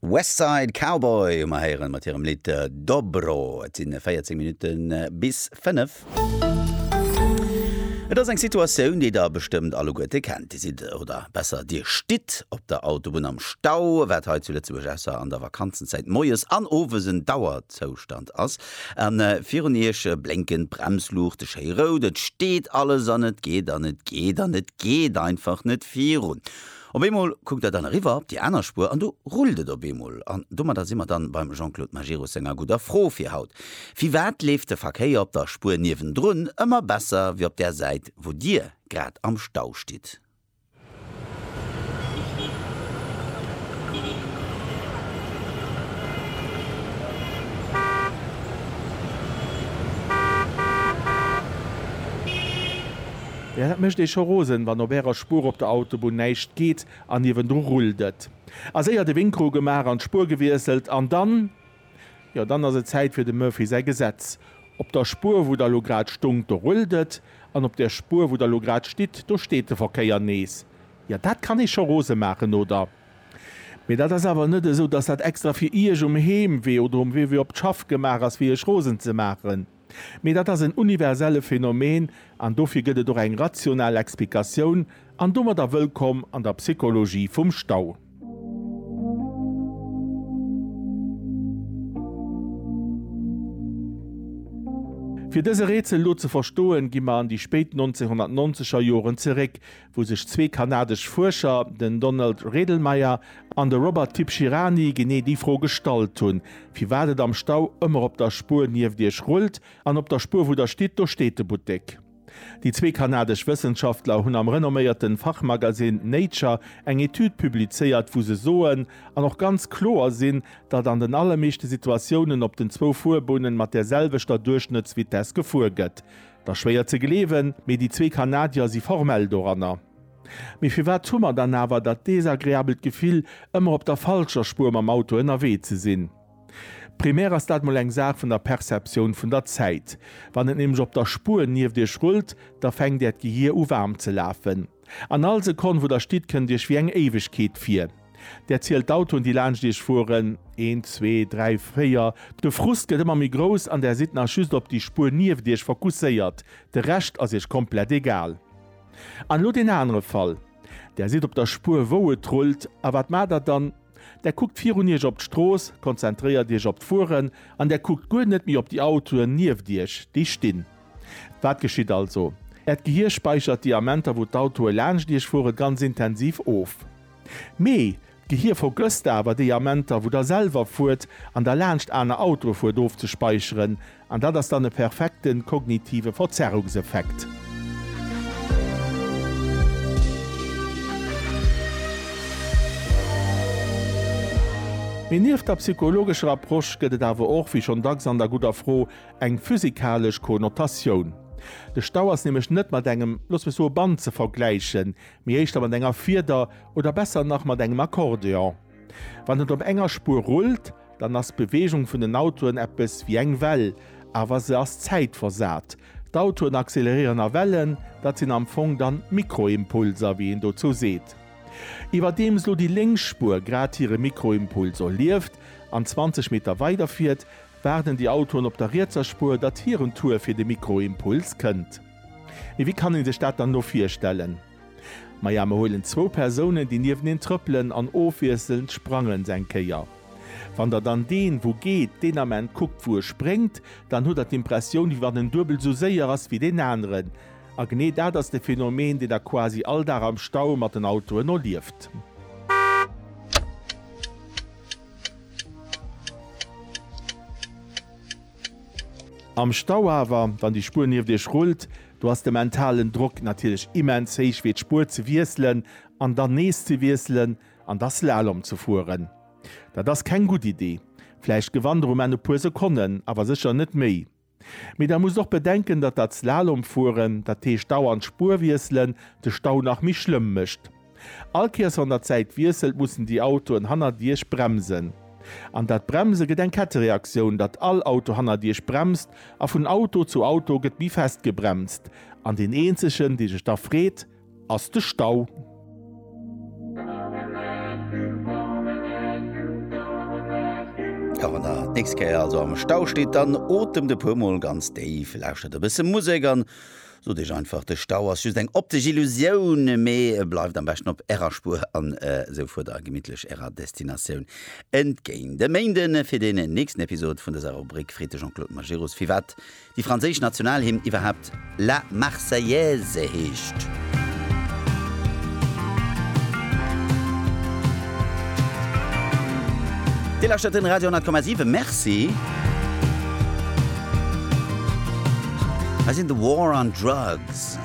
West Side Cowboy hu mer héieren mat hirem Lidd Dobro. Et sinn 14 Minutten bis 5. Et ass eng Situatioun, déi der bestëmmt alleguerte kennt. Dir sidd, oder besser dir stitt op der Autobunn am Stau. Wat hei zu Lëtzebuerg ausser an der Vakanzenzäit moies an owes en Dauerzoustand ass. An virun iech blénken d'Bremsluuchte schéi rout. Et steet alles an et geet an et geet an et geet einfach net virun. Op eemol kuckt der dann eriwwer op déi aner Spuer an do rullt et op eemol. An domadder si mer dann beim Jean-Claude Majerus senger gudder Fro fir haut. Firwat leeft de Verkéier op der Spuer niewendrun ëmmer besser wéi op där Säit wou Dir grad am Stau stitt? Jo, dat mécht ee scho rosen, wann op Ärer Spuer op der Autobunn näischt geet an niewendru rullt et. A séier de Winkru gemaach an d'Spuer gewiesselt an dann, jo dann ass et Zäit fir dem Murphy säi Gesetz. Op der Spuer, wou Der elo grad stongt, do rullt et an op der Spuer, wou Der elo grad stitt, do steet de Verkéier nees. Jo, dat kann ee scho rose maachen, oder? Mee dat ass awer net esou, dass dat extra fir Iech um Heemwee oder um Wee fir op d'Schaff gemaach ass, fir Iech rosen ze maachen. Mee dat ass en universelle Phänomen an dofir gëtt et och eng rational Explikatioun, an domadder wëllkomm an der Psychologie vum Stau. Fir dëse Rätsel elo ze verstoen, gi mer an déi spéit 1990er Joren zeréck, wou sech zwee kanadesch Fuerscher, den Donald Redlmayer an de Robert Tibshirani, genee déi Fro gestallt hunn, firwat et am Stau ëmmer op der Spuer nieft Iech rullt, an op der Spuer, wou Der stitt, do steet de Buttek. Déi zwee kanadesch Wëssenschaftler hunn am renomméierte Fachmagasinn Nature eng Etüd publizéiert, wou se soen, an och ganz kloer sinn, datt an den allermeeschte Situatiounen op den zwou Fuerbunne mat där selwechter Duerchschnëttsvitess gefuer gëtt. Da schwéier ze gleewen, mee déi zwee Kanadier si formell doranner. Mee firwat hu mer dann awer dat desagreabelt Gefill, ëmmer op der falscher Spuer mam Auto ënnerwee ze sinn? Primär ass dat mol eng Saach vun der Perceptioun vun der Zäit. Wann et nämlech op der Spuer nieft iech rullt, da fänkt äert Gehier u waarm ze lafen. An all Sekonn, wou der stitt, kënnt iech wéi eng Éiwegkeet vir. Der zielt d'Autoen, déi laanscht iech fueren, een, zwee, dräi, véier. De Frust gëtt ëmmer méi grouss an der sidd nach just op déi Spuer nieft iech fokusséiert, de Rescht ass iech komplett egal. An elo deen anere Fall, Der sidd op der Spuer, wou et rullt, a wat maacht der dann? Der kuckt virun iech op d'Strooss, konzentréiert iech op d'Fueren an der kuckt guer net méi op déi Autoen nieft iech, déi stinn. Wat geschitt also? Äert Gehier späichert déi Amenter, wou d'Autoe laanscht Iech fueren, ganz intensiv of. Mee d'Gehier vergësst awer déi Amenter, wou Der selwer fuert an Der laanscht aner Autoe fuert, ofzespäicheren. An dat ass dann e perfekte kognitive Verzerrungseffekt. Mee nieft der psychologescher Approche gëtt et awer och, wéi schonn dacks an der gudder Fro, eng physikalesch Konnotatioun. De Stau ass nämlech net mat engem, looss mech soe Band ze vergläichen, mee éischter mat enger Fieder oder besser nach mat engem Akkordeon. Wann et op enger Spuer rullt, dann ass d'Beweegung vun den Autoen eppes wéi eng Well, awer se ass zäitversat. D'Autoen acceleréieren a Wellen, dat sinn am Fong dann Mikroimpulser, wéi een dozou seet. Iwwerdeems lo déi lénks Spuer grad hire Mikroimpuls erlieft an 20 Meter weiderfiert, Waarden déi Autoen op der rietser Spuer, datt hiren Tour fir de Mikroimpuls kënnt? Mee wéi kann ee sech dat dann elo virstellen? Maja, mer huelen zwou Persounen, déi nieweneen trëppelen an ofwiesselnd sprangen se eng Kéier. Wann der dann deen, wou geet, deen Ament kuckt, wou e spréngt, dann hutt der d'Impressioun, wéi wann en duebel esou séier ass wéi deen aneren. A genee dat ass de Phenomen, deen der quasi all Dag am Stau mat den Autoen erlieft. Am Stau awer, wann déi Spuer nieft iech rullt, do ass de mentalen Drock natierlech immens héich fir d'Spuer ze wiesselen an dann nees ze wiesselen an da Slalom ze fueren. Dat ass keng gutt Idee. Vläicht gewannt der um Enn e puer Sekonnen, awer sécher net méi. Mee da musst och bedenken, datt dat Slalomfueren, dat heescht dauernd d'Spuer wiesselen, de Stau nach méi schlëmm mécht. All Kéiers wann der d'Säit wiesselt, mussen déi Autoen hannert Iech bremsen. An dat Bremse gëtt eng Kettereaktioun, datt all Auto hannert Iech bremst a vun Auto zu Auto gëtt méi fest gebremst an deen eenzegen, dee sech da freet, ass de Stau. A wann der d'nächst Kéier also am Stau steet, dann otemt e puer Mol ganz déif, lauschtert e bësse Musek an sot iech einfach, de Stau ass just eng optesch Illusioun, mee bleift am beschten op ärer Spuer an esou fuert der gemittlech ärer Destinatioun entgéint. E Méinden fir deen nächsten Episod vun dëser Rubrik freet de Jean-Claude Majerus, firwat déi franséisch Nationalhymn iwwerhaapt La Marseillaise heescht. Dir lauschtert den Radio 10,7. Merci. Hei sinn The War on Drugs.